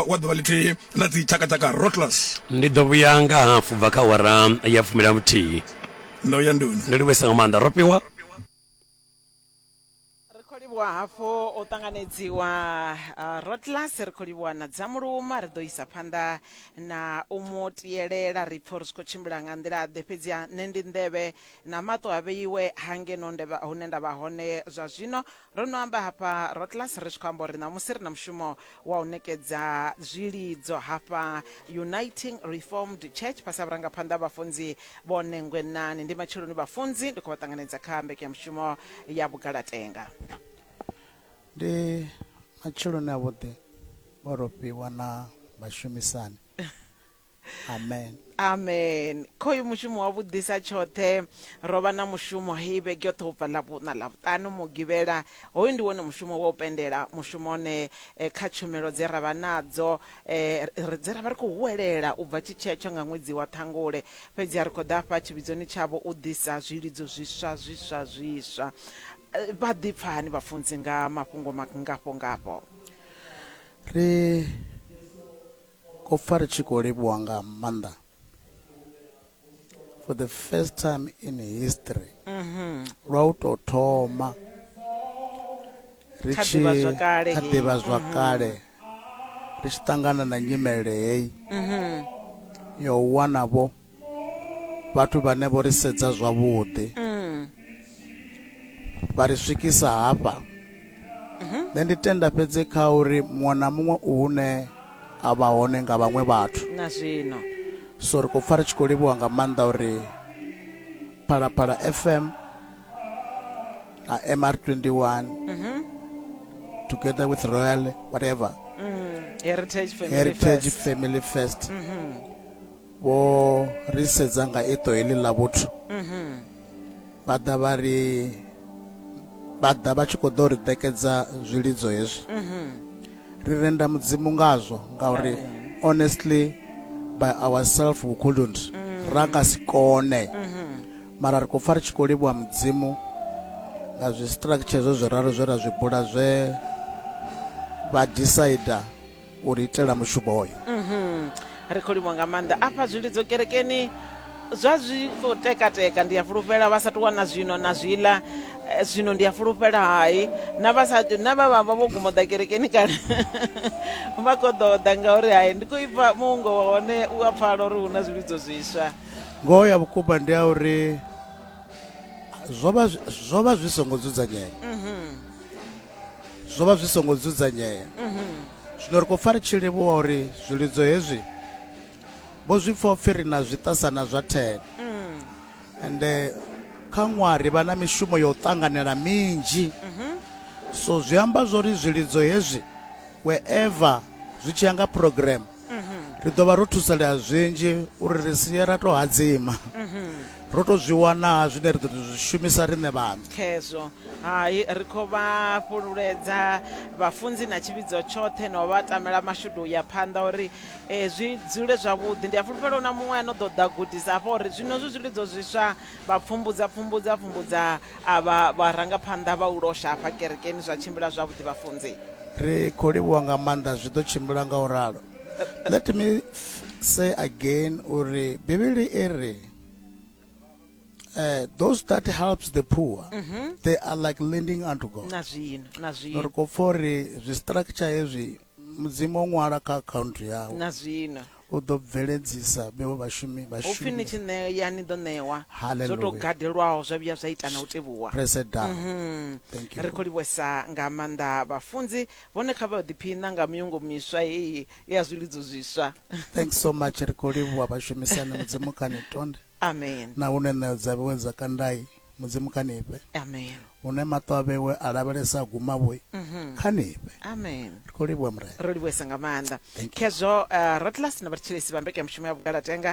wa ḓuvha ḽithihi ḽa dzi tshakatshaka rotlas ndi ḓo vhuya nga hafu bva kha wara ya fumila muthihi ndo ya nduni ndo livhuesa nga maanḓa ro fhiwa livhuwa hafhu u ṱanganedziwa uh, rotlas ri khou livhuwa na dza muluma ri ḓo isa phanḓa na u mu tielela ri pfha uri zwi khou tshimbila nga nḓila ḓe fhedzi nṋe ndi nḓevhe na maṱo a vheiwe hangeno hune nda vha hone zwa zwino Ro no amba hafha Rotlas ri tshi khou amba uri ṋamusi ri na mushumo wa u ṋekedza zwilidzo hafha Uniting Reformed Church fhasi ha vhurangaphanḓa ha Vhafunzi Vho Nengwe Nani. Ndi matsheloni vhafunzi ndi khou vha ṱanganedza kha mbekanyamushumo ya Vhugalatenga. Ndi matsheloni avhuḓi o ro fhiwa na vhashumisani amen amen khoyu mushumo wa vhudisa tshoṱhe ro vha na mushumo hei vhege yoṱhe ubva ḽavhuṋa ḽavhuṱanu mugivhela hoyu ndi wone mushumo wa u pendela mushumo one eh, kha tshumelo dze ra vha nadzo eh, ri- dze ra vha ri khou huwelela u bva tshitshetsho nga ṅwedzi wa ṱhangule fhedzi a ri khou ḓa fha tshivhidzoni tshavho u ḓisa zwilidzo zwiswa zwiswa zwiswa Eh, vha ḓipfa hani vhafunzi nga mafhungo mangafho ngafho ri Ko pfa ri tshi khou livhuwa nga maanḓa for the first time in history mhm. lwa u tou thoma ri tshi kha ḓivha zwakale mhm. ri tshi ṱangana na nyimele heyi mhm. yo wanavho vhathu vhane vho ri sedza zwavhuḓi mm. vha ri swikisa hafha mhm. nṋe ndi tenda fhedzi kha uri muṅwe na muṅwe u hune a vha hone nga vhaṅwe vhathu na zwino so ri khou pfa ri tshi khou livhuwa nga maanḓa uri phalaphala fm na mr 21 mhm. together with royal whatever mm, heritage family heritage first, family first. Mm -hmm. vho ri sedza nga iṱo heḽi ḽa vhuthu vha ḓa vha ri vha ḓa vha tshi khou ḓo ri ṋekedza zwilidzo hezwi ri renda mudzimu ngazwo ngauri honestly by ourselves we couldn't ra nga si kone mara ri khou pfa ri tshi khou livhuwa mudzimu nga zwi structure zwo zwi ralo zwe ra zwi bula zwe vha decider u ri itela mushumo hoyo mhm. ri khou livha nga maanḓa afha zwilidzo kerekeni zwa zwi khou tekateka ndi a fhulufhela vha sa tou wana zwino na zwiḽa eh, zwino ndi a fhulufhela hai na vha sa na vha vha vha vho guma ḓa kerekeni kale vha khou ḓo ḓa ngauri hai ndi khou ipfa muungo wa hone u a pfala uri hu na zwilidzo zwiswa ngoho ya vhukuma ndi ya uri zwo vha zwi songo dzudzanyea mhm. zwo vha zwi songo dzudzanyea zwino ri khou pfa ri tshi livhuwa uri zwilidzo hezwi vho zwi pfa upfhi ri na zwiṱasana zwa thene ende kha ṅwaha ri vha na mishumo ya u ṱanganela minzhi so zwi amba zwori zwilidzo hezwi wherever zwi tshi ya nga program ri ḓo vha ro thusalea zwinzhi uri ri sie ra tou hadzima ro tou zwi wana zwine ri ḓo tou zwi shumisa riṋe vhaṋe khezwo hai ri khou vha fhululedza vhafunzi na tshivhidzo tshoṱhe na u vha tamela mashudu u ya phanḓa uri um zwi dzule zwavhuḓi ndi a fulufhela hu na muṅwe a no ḓo ḓa gudisa hafha uri zwino zwi zwilidzo zwiswa Vha pfumbudza pfumbudza pfumbudza avha vharangaphanḓa vha u losha hafha kerekeni zwa tshimbila zwavhuḓi vhafunzi. Ri khou livhuwa nga maanḓa zwi ḓo tshimbila nga u ralo. Let me say again uri Bivhili i ri uh, those that helps the poor mm -hmm. they are like lending unto God. Na zwino na zwino. Ri khou pfa uri zwi structure hezwi Mudzimu o ṅwala kha akhaunthu yawe. Na zwino. U ḓo bveledzisa vheo vhashumi vhashumi. Upfi ni tshi ṋea ni ḓo ṋewa. Zwo to gadelwaho zwa vhuya zwa ita na u tevhuwa. Press it down. Mhm. Thank you. Ri khou livhuwesa nga maanḓa vhafunzi vhone kha vha ḓiphiṋa nga miungo miswa heyi ya zwilidzo zwiswa. Thanks so much ri khou livhuwa vhashumisani Mudzimu kha ni tonde. Amen. Na hune ṋeo dza vhewe dza kandai. mudzimu kha ni fhe amen hune maṱo a vhewe a lavhelesa a guma vhoi mhm. kha ni fhe amen ri khou livhuwa murena ro livhuesa nga maanḓa Thank you. khezwo uh, ratlas na vhathetshelesi vha mbekanyamushumo ya vhugalatenga